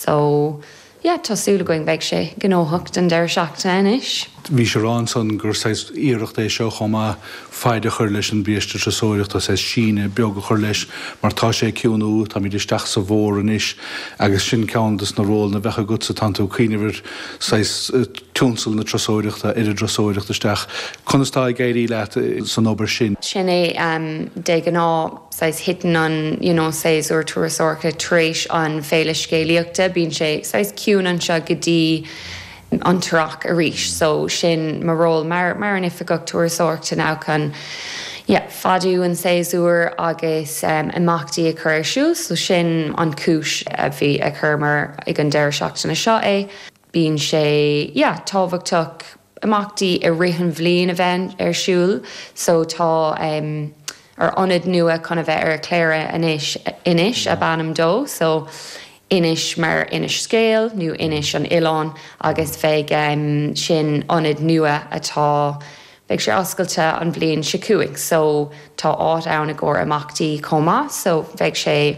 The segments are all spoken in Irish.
So, yeah, tá súil againn beidh sé gnóthach don deireadh seachtaine anois. Bhí sé a rá ansan gur saghas iarracht é seo chomh maith faid a chur leis an biaiste turasóireachta agus saghas síneadh beag a chur leis mar tá sé ag ciúnú, táimid isteach sa bhfómhar anois agus sin ceann dos na rólanna a bheadh agatsa, tánn tú ag cuimhneamh ar saghas tionscal na turasóireachta, ar thurasóireacht isteach. Conas tá ag éirí leat san obair sin? Sin é de ghnáth. saghas titeann an you know séasúr turasóireachta tar éis an Féile Scéalaíochta, bíonn sé saghas ciúin anseo go dtí an tEarrach arís so sin mo ról mar mar an Oifigeach Turasóireachta ná chun yeah fadú an séasúr agus em imeachtaí a chur ar siúl so sin an cúis a bhí a chuireamar ag an deireadh seachtaine seo é bíonn sé yeah tábhachtach imeachtaí i rith an bhliain a bheith ar siúl so tá ár ionad nua chun a bheith ar Chléire anois, Inis ab ainm dó so Inis mar inis scéal nó Inis an Oileáin agus beidh sin ionad nua atá, beidh sé oscailte an bhliain seo chugainn so tá áit ann i gcomhair imeachtaí chomh maith so beidh sé.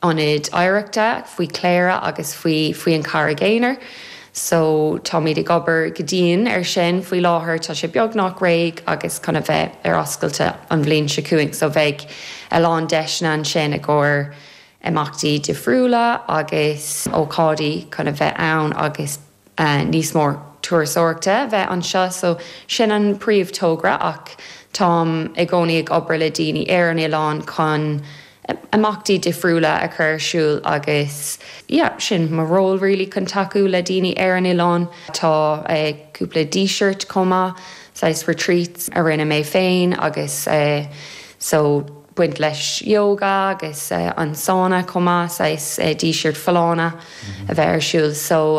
Ionad Oidhreachta faoi Chléire agus faoi faoi an Charraig Aonair so táimid ag obair go dian ar sin faoi láthair tá sé beagnach réidh agus chun a bheith ar oscailte an bhliain seo chugainn so beidh a lán deiseanna ansin i gcomhair imeachtaí difriúla agus ócáidí chun a bheith ann agus níos mó turasóireachta a bheith anseo so sin an príomhthogra ach táim i gcónaí ag obair le daoine ar an oileán chun imeachtaí difriúla a chur ar siúl agus yeah sin mo ról really chun tacú le daoine ar an oileán. Tá cúpla díseart chomh maith saghas retreats a rinne mé féin agus so. baint leis yoga agus an sána chomh maith, saghas díseart folláine a bheith ar siúl. So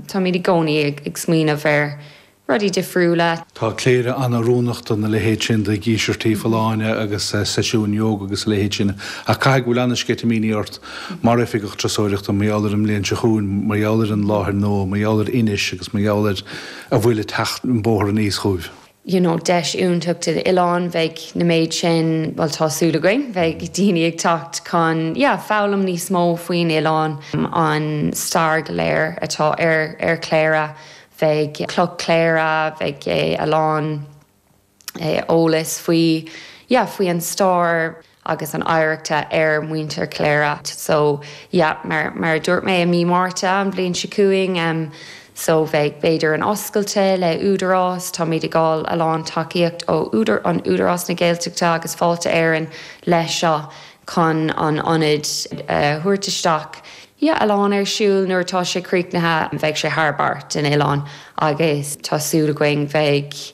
táimid i gcónaí ag smaoineamh ar rudaí difriúla. Tá Cléire an-oiriúnach dá leithéid sin de dhíseartí folláine agus seisiúin yoga agus a leithéid sin ach caithfidh go bhfuil an-sceitimíní ort mar Oifigeach Turasóireachta mar gheall ar an mbliain seo chugainn, mar gheall ar an láthair nua, mar gheall ar Inis agus mar gheall ar a bhfuil ag teacht an bóthar aníos chugaibh. you know deis iontach don oileán beidh an méid sin bhuel tá súil againn beidh daoine ag teacht chun yeah foghlaim níos mó faoin oileán an stair go léir atá ar ar Chléire beidh Cloch Chléire beidh a lán eolas faoi yeah faoi an stair agus an oidhreachta ar mhuintir Chléire so yeah mar mar a dúirt mé i mí Márta an bhliain so chugainn em so bheidh b'fhéidir an oscailte le Údarás táimid ag fáil a lán tacaíocht ó an Údarás na Gaeltachta agus Fáilte Éireann leis seo chun an ionad a thabhairt isteach yeah a lán ar siúl nuair atá sé críochnaithe bheidh sé thar barr den oileán agus tá súil againn bheidh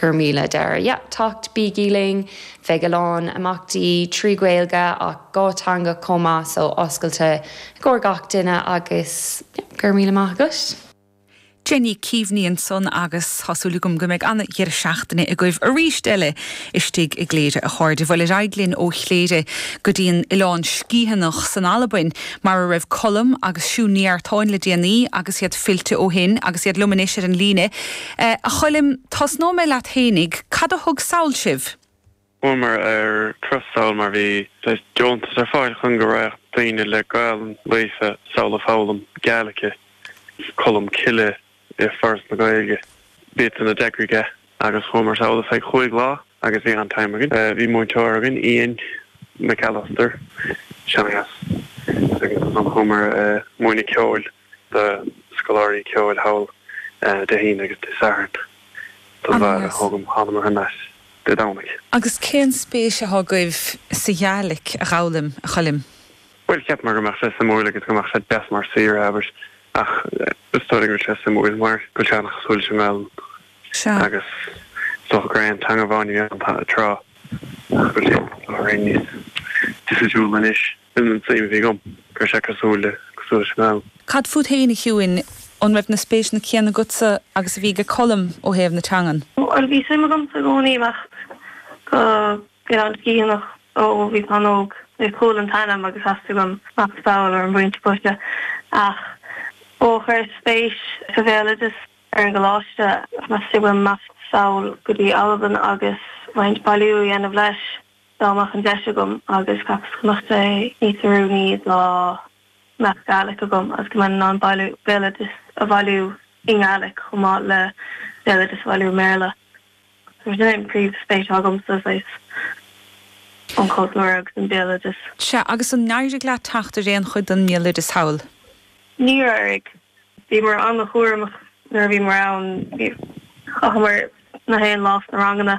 Go raibh míle deireadh yeah teacht bígí linn, bheidh a lán imeachtaí trí Ghaeilge ach dhá teangach chomh maith so oscailte i gcomhair gach duine agus yeah go raibh míle maith agat. Jenny, cuimhneom air san agus tá súil agam go mbeidh an-dheireadh seachtaine agaibh arís eile istigh i gCléire a chairde. Bhuel ar aghaidh linn ó Chléire go dtí an Oileán Sgiathanach in Albain mar a raibh Colm agus Siún Ní Artáin le déanaí agus iad fillte ó shin agus iad liom anois ar an líne A Choilm, tosnóidh mé leat fhéinig, cad a thug sall sibh? Chuamar trasna sall mar bhí deontas ar fáil chun go raghadh daoine le Gaelainn líofa sall ag foghlaim Gaelaice. Colm Cille i Foras na Gaeilge. B'iad san a d'eagraigh é agus chuamar sall ar feadh chúig lá agus bhí an-time againn. Bhí múinteoir againn, Ian McAllister, Seanchas, agus ansan chuamar ag múineadh ceoil. do scoláirí ceoil thall Dé hAoine agus Dé Sathairn don bhfear Gaelach. Sea, thángamar aneas Dé Domhnaigh. Agus cén spéis athá agaibh sa Ghaelaic a fhoghlaim, a Choilm? Bhuel, cheapamar go mbeadh sé suimiúil agus go mbeadh sé deas mar saoire, abair, ach is dóigh liom go bhfuil sé suimiúil mar go bhfuil sé an-chosúil leis an nGaelainn Sea. agus is dócha gur é an teanga amháin a bhí ann tráth ach go bhfuil sé, dá bhrí, níos difriúla anois. Sin an suim a bhí agam, go raibh sé cosúil le, cosúil leis an nGaelainn. Cad fút fhéin, a Shiúin? An raibh na spéiseanna céanna agatsa agus a bhí ag Colm ó thaobh na teangan? Bhuel, bhí suim agamsa i gcónaí imeacht go an Oileán Sgitheanach ó bhíos an-óg. Chuala an t-ainm agus theastaigh uaim imeacht sall ar an bpointe boise. Ach ó chuireas spéis sa bhéaloideas ar an gcoláiste, theastaigh uaim imeacht sall go dtí Albain agus roinnt bailiú a dhéanamh leis. dá mbeadh an deis agam agus cheapas go mbeadh sé níos oiriúnaí dá mbeadh Gaelic agam agus go mbeinn in ann bailiú béaloideas a bhailiú i nGaelic chomh maith le béaloideas a bhailiú i mBéarla. So sin é an príomh spéis agamsa saghas an chultúr agus an béaloideas. Sea, agus ar éirigh leat teacht ar aon chuid den mbéaloideas thall? Níor éirigh. Bhíomar ana-chúramach nuair a bhíomar ann. Chaitheamar. nach aon lá sna ranganna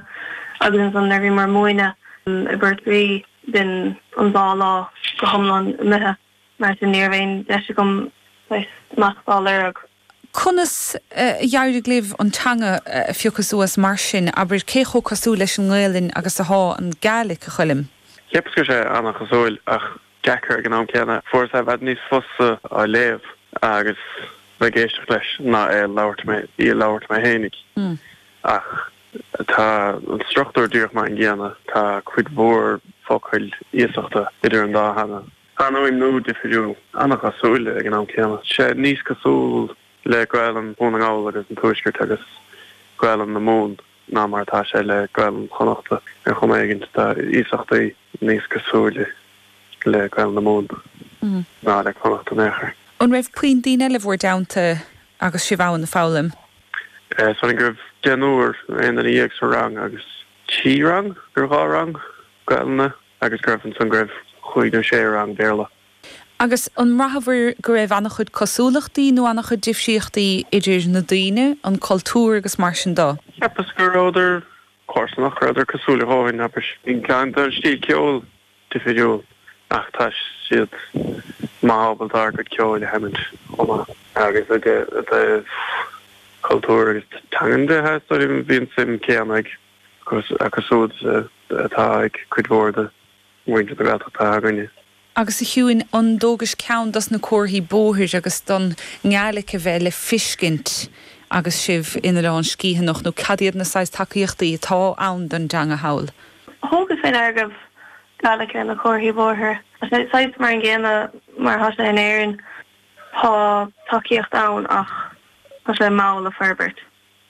agus ansan nuair a bhíomar ag múineadh i bPort Rí b'in an dá lá go hiomlán imithe mar sin ní raibh aon deis agam saghas smacht á lorg. Conas a d'éirigh libh an teanga a phiocadh suas mar sin, abair, cé chomh cosúil leis an nGaelainn agus atá an Gaelic, a Choilm? Cheapas go raibh sé an-chosúil ach deacair ag an am céanna. Fuaireas i bhfad níos fusa á léamh agus bheith ag éisteacht leis ná é a labhairt mé í a labhairt mé fhéinig. Ach tá an struchtúr díreach mar an gcéanna, tá cuid mhór focail iasachta idir an dá theanga. Tá an fuaimniú difiriúil, an-chosúil ag an am céanna. Tá sé níos cosúil le Gaelainn Dhún na nGall agus an Tuaiscirt agus Gaelainn na Mumhan. ná mar atá sé le Gaelainn Chonnachta ar chuma éigin, tá iasachtaí níos cosúile le Gaelainn na Mumhan ná le Connachta in aon chor. An raibh puinn daoine eile bhur dteannta agus sibh ann ag foghlaim? Samhlaím go raibh deichniúr nó aon duine dhéag sa rang agus trí rang nó dhá rang Gaelainne agus go raibh ansan go raibh cúig nó sé rang Béarla. Agus ar bhraitheabhair go raibh an-chuid cosúlachtaí nó an-chuid difríochtaí idir na daoine, an cultúr agus mar sin de? Cheapas go rabhadar comharsanach, go rabhadar cosúil a dhóthain, abair. Gan dabht tá an stíl ceoil difiriúil ach tá siad maith ábalta ár gcuid ceoil a sheimint chomh maith. Agus i dtaobh cultúr agus teangan de, tá súil agam bhí an suim céanna ag, acu súd atá ag cuid mhór de. mhuintir na Gaeltachta againne. agus a Chuinn an dtógais ceann dos na comharthaí bóthair agus don nGaelic a bheith le fiscint agus sibh in Oileán Sgitheanach nó cad iad na saghas tacaíochtaí atá ann don dteanga thall? Thugas fé ndeara go raibh Gaelic ar na comharthaí bóthair. Tá sé saghas mar an gcéanna mar atá sé in Éirinn, tá tacaíocht ann ach tá sé mall ag forbairt.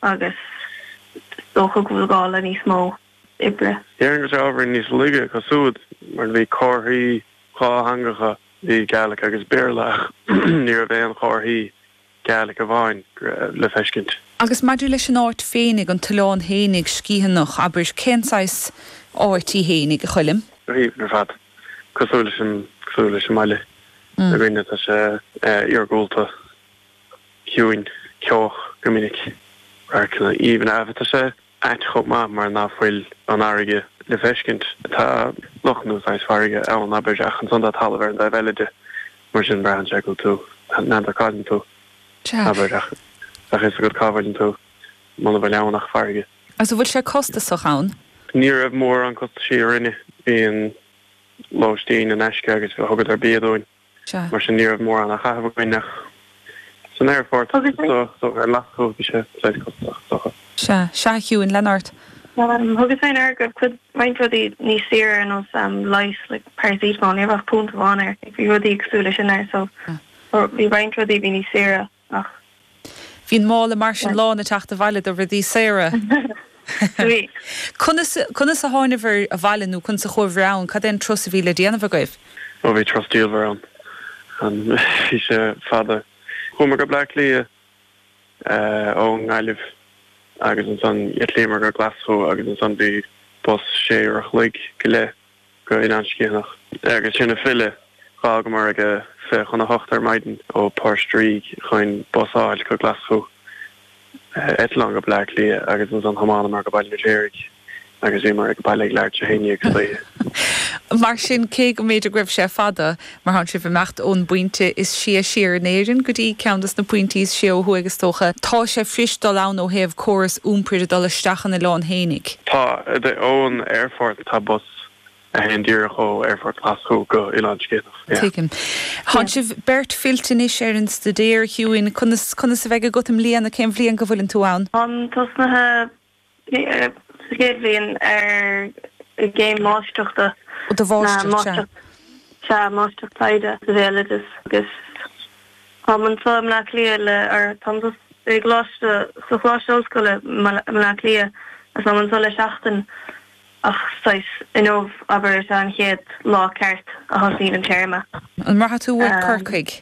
agus is dócha go bhfuil gá le níos mó oibre. Déarfainn go bhfuil sé abair níos laige acu súd mar bhí comharthaí dhátheangacha, bhí Gaelic agus Béarla ach ní raibh aon chomharthaí Gaelic amháin le feiscint. Agus maidir leis an áit féinig, an t-oileán fhéinig, Sgitheanach, abair, cén saghas áit í fhéinig, a Choilm? Go haoibhinn ar fad. Cosúil leis an mbaile againn, tá sé iargúlta. ciúin, ceoch go minic. Radharcanna aoibhne ann, bhí sé saghas ait chomh maith mar ná fuil an fharraige le feiscint. Tá loch nó saghas farraige ann, abair, ach ansan tá talamh ar an dtaobh eile de. Mar sin braitheann sé go bhfuil tú n'fheadar cá bhfuileann tú, abair, ach bheadh fhios agat cá bhfuileann tú muna bhfuil ann ach farraige. Agus an bhfuil sé costasach ann? Ní raibh mórán costaisí orainne. Bhí an lóistín in aisce agus thugadar bia dúinn. Sea. Mar sin ní raibh mórán á chaitheamh againn ach san aerfort agus sa treo ar lastuas. Bhí sé saghas costasach, is dócha. Sea. Sea, a Shiúin, lean ort. Thugas féin aird go raibh cuid roinnt rudaí níos saoire ar nós leighis, like paracetamol, ní raibh ach punt amháin air. Bhí rudaí cosúil leis sin ar so bhí roinnt rudaí a bhí níos saoire. Ach. Bhí an mála mar sin lán ag teacht abhaile do rudaí saora. Bhí. Conas, conas a thánabhair abhaile nó conas a chuabhair ann? Cad é an turas a bhí le déanamh agaibh? Ó bhí turas diamhair ann. An, bhí sé fada. Chuamar go Bleá Cliath ó nGaillimh agus ansan d'eitlíomar go Glaschú agus ansan bhí bus sé huaire an chloig go leith. go dtí an Oileán Sgitheanach. Agus ansan ag filleadh, d'fhágamar ag a fiche chun a hocht ar maidin ó Phort Rígh chun bus a fháil go Glaschú, eitleán go Bleá Cliath agus ansan thiomáineamar go Baile an Fheirtéaraigh agus bhíomar ag baile ag leathuair tar éis a haon déag istoíche. Mar sin, cé go mb'fhéidir go raibh sé fada, Mar tánn sibh ag imeacht ón bpointe is sia siar in Éirinn go dtí ceann de na pointí is sia ó thuaidh is dócha, tá sé fuirist dul ann ó thaobh córas iompair de, dul isteach an oileán fhéinig. Tá, ón aerfort tá bus a théann díreach ó aerfort Ghlaschú go Oileán Sgitheanach, yeah. Tuigim. Tánn sibh beirt fillte anois ar an staidéar, a Shiúin, conas, conas a bheidh agat i mbliana, cén bhliain go bhfuileann tú ann? Táim tosnaithe sa chéad bhliain ar an gcéim mháistreachta, do mháistreacht, sea. sea, Máistreacht Taighde sa Bhéaloideas agus táim anso i mBleá Cliath le, or táim sa gColáiste, sa Choláiste Ollscoile i mBleá Cliath agus táim anso le seachtain ach saghas, inniu, abair, is ea an chéad lá ceart a thosaíonn an téarma. An mbraithfidh tú uait Corcaigh?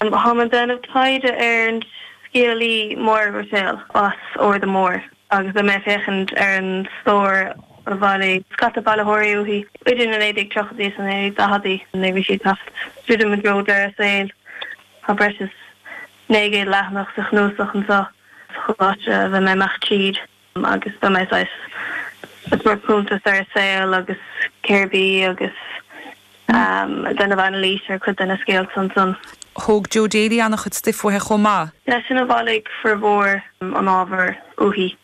Táim ag déanamh taighde ar an scéalaí Máire Ruiséal as an Arda Mór agus beidh mé ag féachaint ar an stór a bhailigh scata bailitheoirí uaithi idir na 1930idí is na 1940idí nuair a bhí sí ag teacht druidim i dtreo deireadh a saoil. Tá breis is 900 leathanach sa chnuasach anseo sa choláiste a bheidh mé ag imeacht tríd. agus beidh mé saghas ag cur cuntas ar a saol agus cérbh í agus déanamh anailís ar chuid de na scéalta ansan. Thóg Joe Daly an-chuid stuif uaithi chomh maith. Seisean a bhailigh formhór an ábhair uaithi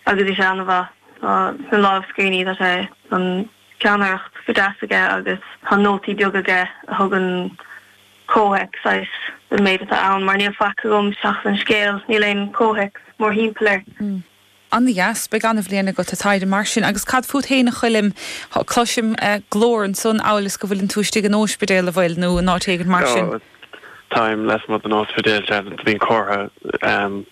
agus bhí sé an-mhaith. Tá sna lámhscríbhinní, tá an. pheannaireacht go deas aige agus tá nótaí beaga aige a thugann comhthéacs saghas don méid atá ann mar níl faic agam seachas an scéal, níl aon comhthéacs mórthimpeall air. Ana dheas. Beidh ana bhliain agat a Thaidhg mar sin agus cad fút fhéin a Choilm? Cloisim glór ansan amhail is go bhfuileann tú istigh in ospidéal, an bhfuil, nó in áit éigint mar sin? Táim lasmuigh den ospidéal, dearfa, bhíonn comhartha.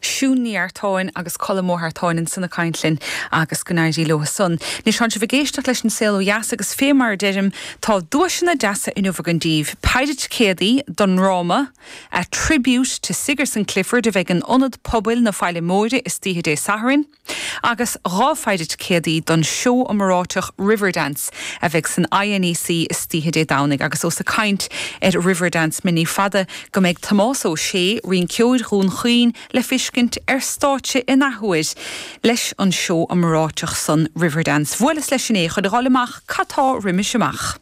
Siún Ní Artáin agus Colm Ó hEartáin in san a caint linn agus go n-éirí leo i san. Anois tá'n sibh ag éisteacht leis an Saol Ó Dheas agus fé mar a deirim tá duaiseanna deasa inniu againn daoibh. Paidhir ticéadaí don ndráma A Tribute to Sigerson Clifford a bheidh in Ionad Pobail na Faille Móire istoíche Dé Sathairn. agus dhá phaidhir ticéadaí don seó iomoraiteach Riverdance a bheidh san INEC istoíche Dé Domhnaigh agus ós ag caint ar Riverdance mé ní fada go mbeidh Tomás Ó Sé, rinceoir Dhún Chaoin, le feiscint ar stáitse in athuair leis an seó iomoraiteach san Riverdance. Bhuaileas leis inné chun a dh'fháilt amach cad tá roimis amach.